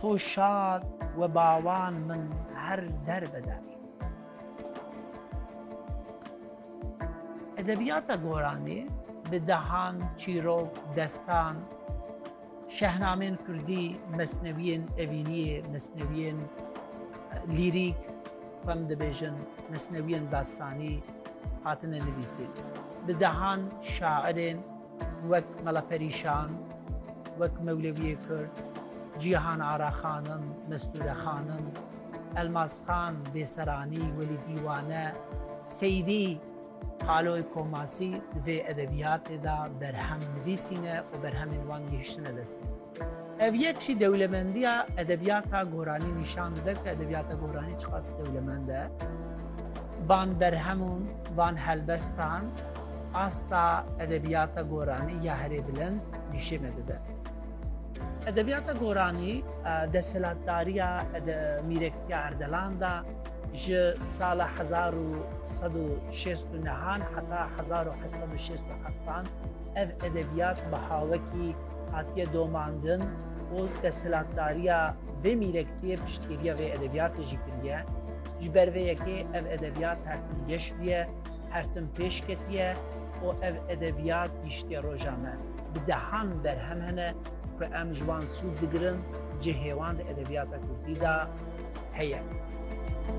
To şad we bawan min her der be der. Edebiyata Goranî bi dehan, çîrok, destan, şehnamên Kurdî, mesnewiyên evîniyê, mesnewiyên lîrîk, xwem dibêjin, mesnewiyên dastanî hatine nivîsîn. Bi dehan şairên wek Mela Perîşan, wek Mewlewiyê Kurd, Cîhan Ara Xanim, Mestûre Xanim, Elmas Xan, Bêseranî, Welî Dîwane, Seyîdî, Xaloy Komasî di vê edebiyatê de berhem nivîsîne û berhemên wan gihiştine destê min. Ev yek jî dewlemendiya edebiyata goranî nîşan dide ku edebiyata goranî çiqas dewlemend e. Van berhemun, van helbestan asta edebiyata goranî ya herê bilind nîşêne dide. Edebiyata goranî desthilatdariya Mîrektiya Erdelan de ji sala hezar û sed û şêst û nehan heta hezar û heşt sed û şêst û heftan ev edebiyat bi hawekî hatiye domandin û desthilatdariya vê mîrektiyê piştgiriya vê edebiyatê jî kiriye. Ji ber vê yekê ev edebiyat her tim geş bûye, her tim pêş ketiye û ev edebiyat gihiştiye roja me. Bi dehan berhem hene ku em ji wan sûd digirin, cihê wan di edebiyata kurdî de heye.